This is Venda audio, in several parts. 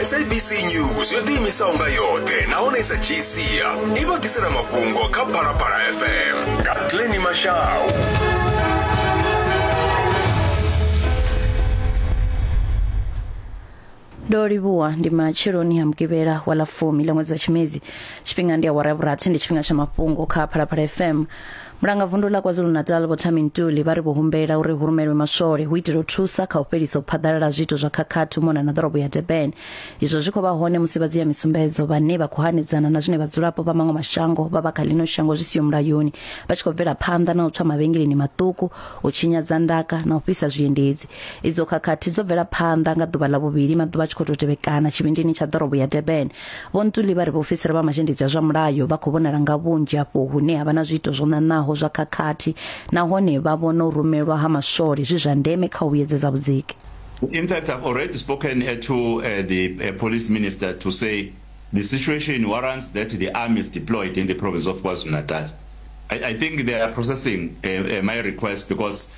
sabc news yo ḓiimisaho nga yoṱhe nahone i sa dzhii sia i vha ḓisela mafhungo kha phalaphala fm nga tleni mashau ndo livhuwa ndi matsheloni ha mugivhela wa ḽa fumi ḽa ṅwedzi wa tshimedzi tshifhinga ndi awara ya vhurathi ndi tshifhinga tsha mafhungo kha phalaphala fm Mulanga vundu ḽa KwaZulu-Natal Vho Thami Ntuli vha ri vho humbela uri hu rumelwe maswole hu itela u thusa kha u fhelisa u phaḓalala ha zwiito zwa khakhathi u mona na ḓorobo ya Durban. Izwo zwi khou vha hone musi vha dzia misumbedzo vhane vha khou hanedzana na zwine vhadzulapo vha maṅwe mashango vha vha kha ḽino shango zwi siho mulayoni vha tshi khou bvela phanḓa na u tswa mavhengeleni maṱuku, u tshinyadza ndaka na u fhisa zwiendedzi. Idzo khakhathi dzo bvela phanḓa nga ḓuvha ḽa vhuvhili maḓuvha a tshi khou tou tevhekana tshivhindini tsha ḓorobo ya Durban. Vho Ntuli vha ri vhaofisiri vha mazhendedzi a zwa mulayo vha khou vhonala nga vhunzhi afho hune ha vha na zwiito zwo ṋaṋaho zwa khakhathi nahone vha vhona u rumelwa ha maswole zwi zwa ndeme kha u vhuyedzedza vhudziki. In fact, I've already spoken uh, to uh, the uh, police minister to say the situation warrants that the army is deployed in the province of KwaZulu-Natal. I, I think they are processing uh, uh, my request because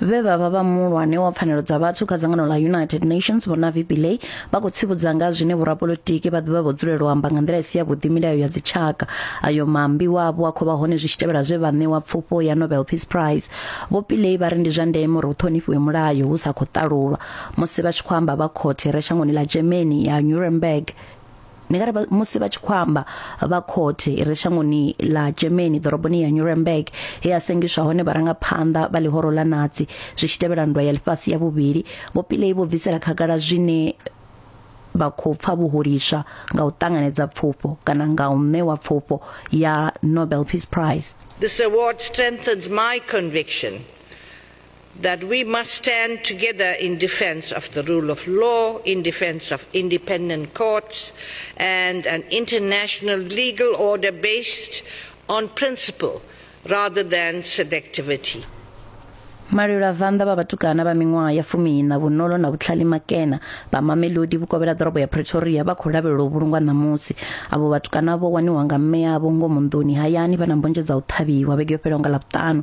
vhe vha vha vha muhulwane wa pfanelo dza vhathu kha dzangano ḽa united nations vho navi pillay vha khou tsivhudza nga zwine vhorapolitiki vha ḓivha vho dzulela u amba nga nḓila i si yavhuḓi milayo ya dzitshaka ayo mambi wavho a khou vha hone zwi tshi tevhela zwe vha ṋewa pfufho ya nobel peace prize vho pillay vha ri ndi zwa ndeme uri hu ṱhonifhiwe mulayo hu sa khou ṱalulwa musi vha tshi khou amba vha khothe re shangoni ḽa germany ya nuremberg Ndi nga ri musi vha tshi khou amba vha khothe i re shangoni ḽa Germany ḓoroboni ya Nuremberg he a sengiswa hone vharangaphanḓa vha ḽihoro ḽa Nazi zwi tshi tevhela nndwa ya ḽifhasi ya vhuvhili vho Pillay vho bvisela khagala zwine vha khou pfa vhuhuliswa nga u ṱanganedza pfufho kana nga u ṋewa pfufho ya Nobel Peace Prize This award strengthens my conviction that we must stand together in defense of the rule of law, in defense of independent courts, and an international legal order based on principle rather than selectivity. malwilavhanḓa vha vhatukana vha miṅwaha ya fumiiṋa vhunolo na vhutlhali makena vha mamelodi vhukovhela ḓorobo ya pretoria vha khou lavhelelwa u vhulungwa ṋamusi avho vhatukana vho waniwa nga mme avho ngomu nḓuni hayani vha na mbonzhe dza u ṱhavhiwa vhege yo fhelaho nga ḽavhuṱanu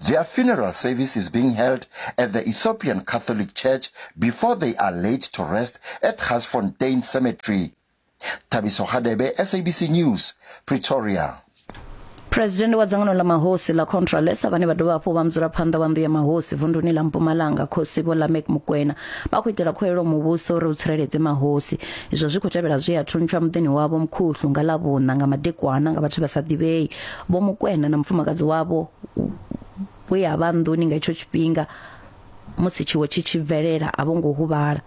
Their funeral service is being held at the Ethiopian Catholic Church before they are laid to rest at Garsfontein Cemetery. Thabiso Hadebe, SABC News, Pretoria. president wa dzangano ḽa mahosi ḽa contralesa vhane vha dovha hafhu vha mudzulaphanḓa wa nnḓu ya mahosi vunduni ḽa mpumalanga khosi vho lamek mukwena vha khou itela khuwelelo muvhuso uri u tsireledze mahosi izwo zwi khou tevhela zwe a thuntsha muḓini wavho mukhuhlu nga ḽa vhuṋa nga madekwana nga vhathu vha sa ḓivhei Vho Mukwena na mufumakadzi wavho we a vha nḓuni nga itsho tshifhinga musi tshiwo tshi tshi bvelela a vho ngo huvhala.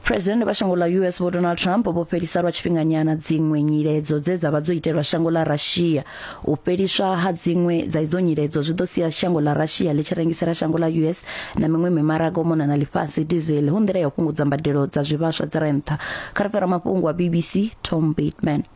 President vha shango ḽa US Vho Donald Trump vho fhelisa lwa tshifhinganyana dziṅwe nyiledzo dze dza vha dzo itelwa shango ḽa Russia. U fheliswa ha dziṅwe dza idzo nyiledzo zwi ḓo sia shango ḽa Russia ḽi tshi rengisela shango ḽa US na miṅwe mimaraga u mona na ḽifhasi diesel hu nḓila ya u fhungudza mbadelo dza zwivhaswa dzi re nṱha. Kha ri fara mafhungo a BBC Tom Bateman.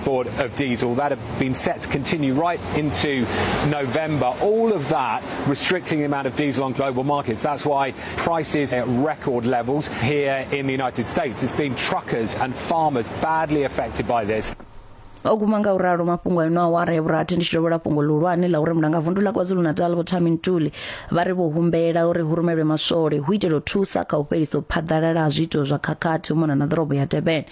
board of diesel that have been set to continue right into November. All of that restricting the amount of diesel on global markets. That's why prices at record levels here in the United States. It's been truckers and farmers badly affected by this. o guma nga u ralo mafhungo a ino awara ya vhurathi ndi tshi dovhela fhungo ḽihulwane ḽa uri mulangavundu ḽa kwazulu-natal vho tami ntuli vha ri vho humbela uri hu rumelwe maswole hu itela u thusa kha u fhelisa u phaḓalala ha zwiito zwa khakhathi u mona na ḓorobo ya durban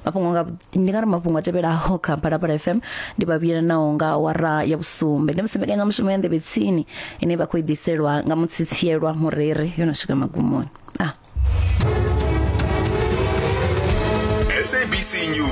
mafhungo nga ndi nga ri mafhungo a tevhelaho kha Phalaphala FM ndi vha vhuyela naho nga awara ya vhusumbe ndi musi mbekanyamushumo ya nḓevhe tsini ine vha khou i ḓiselwa nga mutsitsielwa mureri yo no swika magumoni ah. SABC News.